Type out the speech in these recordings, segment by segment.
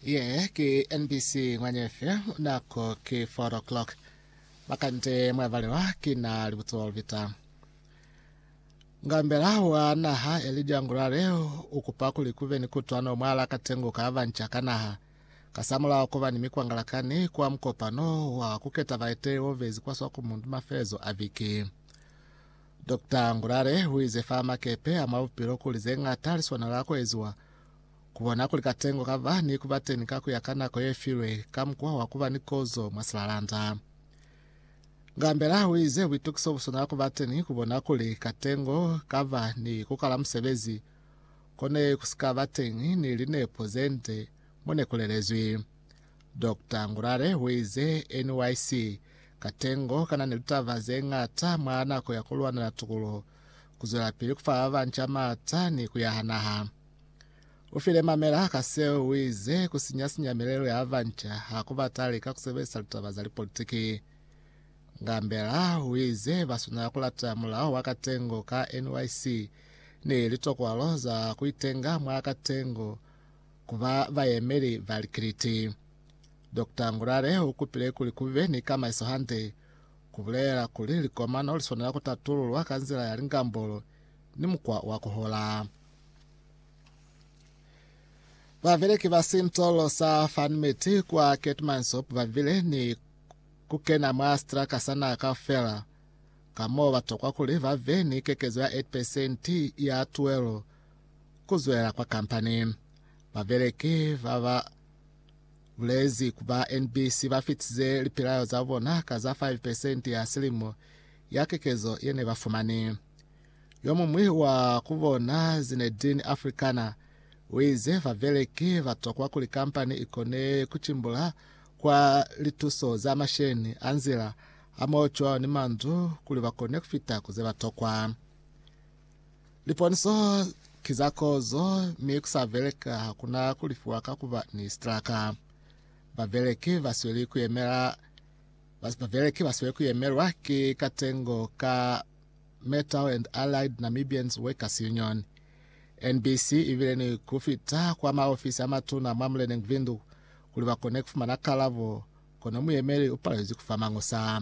Ye ki NBC Ngwanyefe, nako ki 4 o'clock. Makande mwavalelwa ki na libuto lubita. Ngambela wa naha Elijah Ngurare ukupa kuli kube ni kutwano mwala katengo ka banca ka naha, kasamulaho kuba ni mikwangalakani kwa mukopano wa kuketa baeteli obezi kwa Swakopmund mafelezo a viki. Doctor Ngulale uize fa makepe a mwa bupilo kuli ze ñata li swanela ku eziwa, ku bona kuli katengo ka ba ni kuba teni ka kuya ka nako ye filwe ka mukwa wa kuba ni kozo mwa silalanda. Ngambela uize buitukiso bu swanela kuba teni ku bona kuli katengo ka ba ni kukala musebezi, kone ku si ka ba teni ni linepo zende mo ne ku lelezwi. Doctor Ngurare uize, NYC. Katengo kanani litaba zeñata mwa nako ya kulwanela tukuluho, kuzwelapili kufa babanca maata ni kuyaha naha. Ufile mamela ka seo, uize, Kusinya-sinya milelo ya babanca hakubataali ka kusebelisa litaba za lipolitiki. Ngambela uize, Baswanela kulata mulao wa Katengo ka NYC ni litokwalo za kuitenga mwa Katengo, ku ba bayemeli ba likiliti. Dokta Ngurare u kupile kuli ku be ni kamaiso hande, ku bulelela kuli likomano li swanela ku tatululwa ka nzila ya lingambolo ni mukwa wa ku hola. Babeleki ba sintolo sa Farnmeat kwa Keetmanshoop ba bile ni ku kena mwa sitraka sa naha kaufela, ka mo ba tokwa kuli ba be ni kekezo ya 8 pesenti ya tuelo ku zwelela kwa kampani. Babeleki ba ba bulezi ku ba NBC ba fitize lipelaelo za bona ka za 5 pesenti ya silimo ya kekezo ye ne ba fumani. Yo muñwi wa ku bona, Zinedine Afrikaner, u ize babeleki ba tokwa kuli kampani i kone ku cimbula kwa lituso za masheni a nzila, hamoho cwalo ni mandu kuli ba kone ku fita ku ze ba tokwa. Liponiso ki za kozo, mi ku sa beleka ha ku na ku lifiwa ka ku ba ni sitraka. Babeleki ba sweli ku yemela babeleki ba sweli ku yemelwa ki katengo ka Metal and Allied Namibians Workers Union, NBC, ibile ni ku fita kwa maofisi a matuna mwa muleneng Vindu kuli ba kone ku fumana kalabo, kono muyemeli u palelezi ku fa mañusa.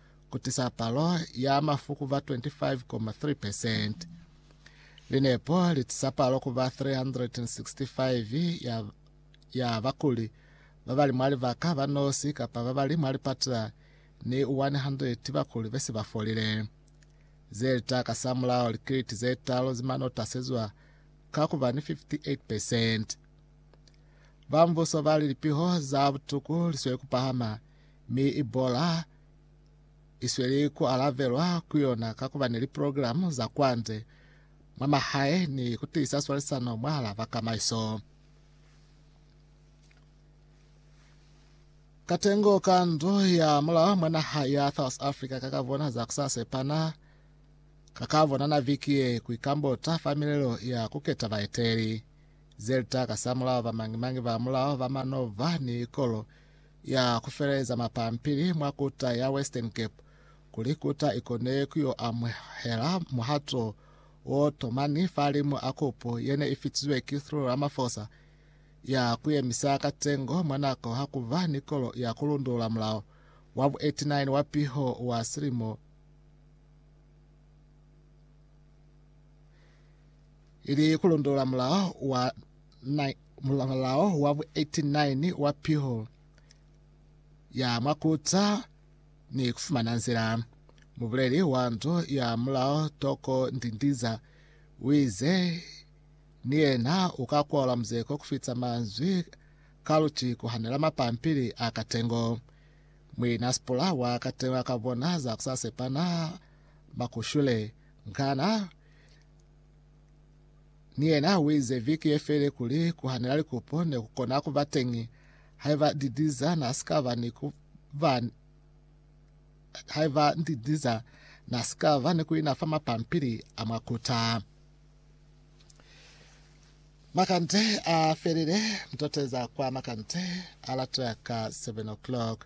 ku tisa palo ya mafu ku ba 25.3%. Linepo li tisa palo ku ba 365 ya, ya bakuli ba ba li mwa libaka ba nosi kapa ba ba li mwa lipatila ni 100 bakuli be si ba folile. Ze li ta kasamulaho likiliti ze talu ze manota se zwa ka ku ba ni 58%. Ba mbuso ba li lipiho za butuku li sweli ku pahama mi Ebola i sweli ku alavelwa ku yona ka ku ba ni liprograma za kwande, mwa mahae ni ku tiisa swalisano mwahal'a bakamaiso. Katengo ka ndo ya mulao mwa naha ya South Africa ka ka bona za ku sa sepana ka ka bonana viki ye ku ikambota fa milelo ya ku keta baeteli. Ze li ta ka sa mulao ba mañi-mañi ba mulao ba manova ni ikolo ya ku feleleza mapampili mwa kuta ya Western Cape kuli kuta i kone ku yo amuhela muhato wo tomani fahalimu a kopo ye ne i fitizwe ki Cyril Ramaphosa ya ku yemisa katengo mwa nako ha ku ba ni kolo ya ku lundulula mulao wa bu 89 wa piho wa silimo ili ku lundulula mulao wa Na mulamalao wa bu 89 wa piho ya mwa kuta ni kufumana nzila. Mubuleli wa ndu ya mulao Toko Ndindiza uize ni yena uka kwaula muzeko kufita manzwi ka luti kuhanela mapampili a katengo. Muina Sipula wa katengo aka bona za kusasepana makushule ngana Ni yena uize viki yefele kuli kuhanela likupo nekukona kuba teñi haiba Didiza nasikaba ni kuba haiba Didiza nasikaba ni kuina fa mapampili a mwa kuta. Makande a felile, mtoteza kwa makande a latoya ka 7 o'clock.